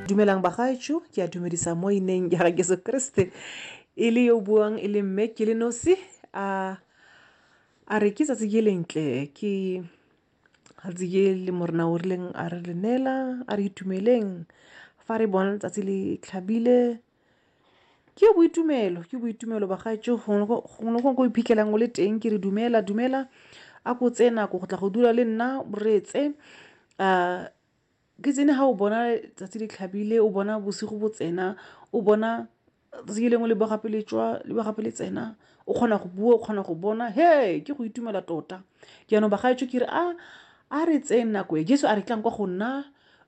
Dumelang bagaetsho, ke a dumedisa mo ineng ya ga Jesu Kriste e le yo buang e le mme ke le nosi a a re ke tsatsi ke lentle ke tsatsi ke le morena o rileng a re le neela a re itumeleng fa re bona tsatsi le tlhabile Ke boitumelo, ke boitumelo bagaetsho gongwe le gongwe ko iphitlhelang o le teng ke re dumela dumela a ko tseye nako go tla go dula le nna reetse um ke tsene ga o bona tsatsi le tlhabile o bona bosigo bo tsena o bona tsatsi lengwe le bo gape le tswa le bo gape le tsena o kgona go bua o kgona go bona he ke go itumela tota jaanong bagaetsho ke re a a re tseye nako e jesu a re tlang kwa go nna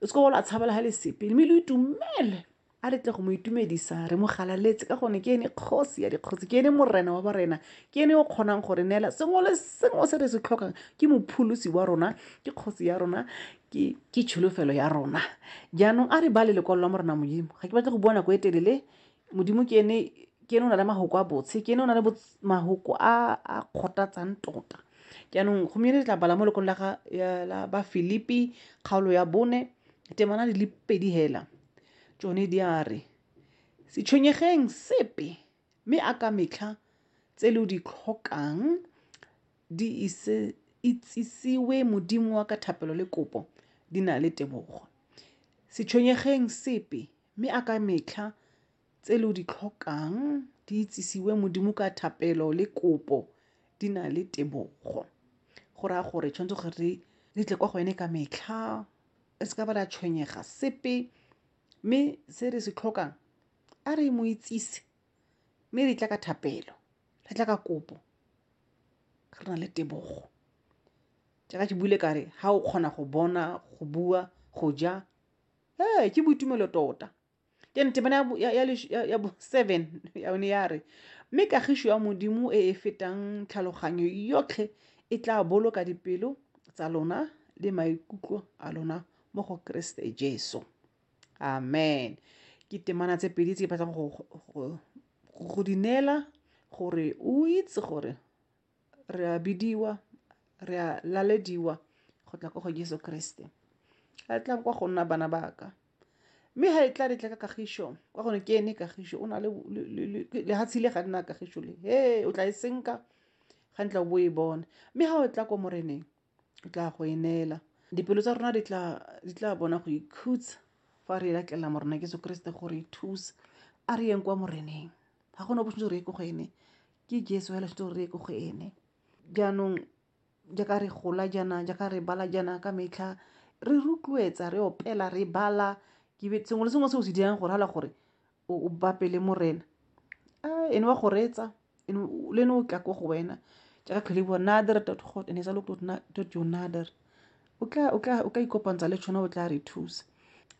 o se ka wa la tshabela ga le sepe mme lo itumele A re tle go mo itumedisa, re mo galaletse, ka gone ke ene kgosi ya dikgosi, ke ene morena wa barena, ke ene o kgonang go re neela sengwe le sengwe se re se tlhokang. Ke mopholosi wa rona, ke kgosi ya rona, ke ke tsholofelo ya rona. Jaanong a re bale lekwalo la Morena Modimo. Ga ke batle go bua nako e telele. Modimo ke ene ke ene o na le mahoko a botshe, ke ene o na le mahoko a a kgothatsang tota. Jaanong gompieno re tla bala mo lekwalo la ga la ba Filipi kgaolo ya bone temana di le pedi hela. Tsone di a re, Se tshwenyegeng sepe, mme a ka metlha tse lo di tlhokang di ise itsisiwe Modimo wa ka thapelo le kopo di na le tebogo. Se tshwenyegeng sepe, mme a ka metlha tse lo di tlhokang di itsisiwe Modimo ka thapelo le kopo di na le tebogo. Go raya gore tshwanetse gore re tle kwa go ene ka metlha re se ka ba la tshwenyega sepe mme se re se tlhokang a re mo itsise mme re tla ka thapelo re tla ka kopo re na le tebogo jaaka ke buile kare ga o kgona go bona go bua go ja ee ke boitumelo tota ke ne temana ya bo seven yone ya re mme kagišo ya modimo e e fetang tlhaloganyo yotlhe e tla boloka dipelo tsa lona le maikutlo a lona mo go keresete jesu amen ke temana tse pedi tse batlang go di neela gore o itse gore re a bidiwa re a lalediwa go tla kwa go jesu kriste ga e tla kwa go nna bana baka mme ga e tla re tla ka kagišo kwa gone ke ene kagišo o na le lehatshe le ga nna kagišo le he o tla e senka ga ntla o bo e bone mme ga o tla kwa moreneng Ke tla go e neela. Dipelo tsa rona di tla bona go ikhutsa fa re latlela Morena Jesu Keresete gore e thusa. A re yeng kwa Moreneng. Ga gona bo re ye ko go ene. Ke Jesu fela se re ye ko go ene. Jaanong jaaka re gola jaana, jaaka re bala jaana ka metlha, re rotloetsa, re opela, re bala, sengwe le sengwe se o se dirang go rala gore o bape le morena a ene wa go reetsa le ene o tla ko go wena jaaka tlhole bua nader dot god and esa lokto dot your nader o tla o tla o ka ikopantsha le tšhona o tla re thusa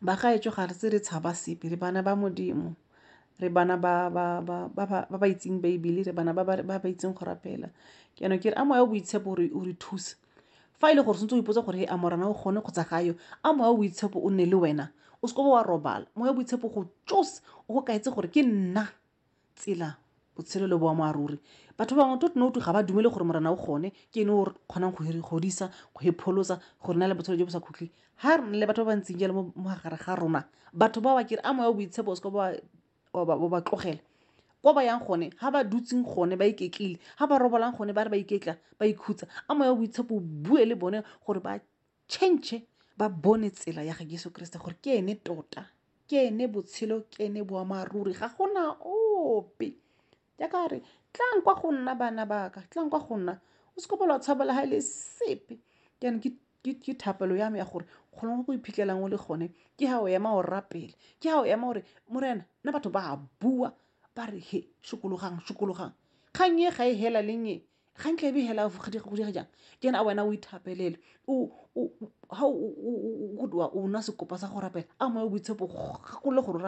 ba gaetsho ga re se re tshaba sepe re bana ba modimo re bana ba ba ba ba ba ba itseng baebele re bana ba ba ba itseng go rapela ke yana ke re a moya o boitshepo o re thusa fa e le gore sentse o ipotsa gore a morana o kgone kgotsa ga yo a moya o boitshepo o nne le wena o seko wa robala moya boitshepo go tsos o go kaetse gore ke nna tsela botshelo le boammaaruri batho ba bangwe totno tu ga ba dumele gore morana o gone ke ene o kgonang go godisa go epholosa go rena le botshelo jo bo sa khutlhe ga re le batho ba ba ntseng jalo mo gare ga rona batho ba ba kere a moya o boitshepo o seko ba wa ba tlogela ko ba yang gone ga ba dutseng gone ba iketlile ga ba robolang gone ba re ba iketla ba ikhutsa a moya boitshepo bue le bone gore ba change ba bone tsela ya ga jesu kriste gore ke ene tota ke ene botshelo ke ene boammaaruri ga gona ope Ya ka re, tlang kwa go nna bana baka, tlang kwa go nna. O seke bola o tshabela ga e le sepe. Jaanong ke thapelo ya me ya gore gone go go iphitlhelang o le gone ke ga o ema o rapele, ke ga o ema gore Morena nna batho ba a bua ba re he sokologang, sokologang. Kgang e ga e hela leng e, kgang tla be e hela go dira jang? Ke ena a wena o ithapelele o nwa sekopa sa go rapela a moya o boitshepo o gakolola gore o rapele.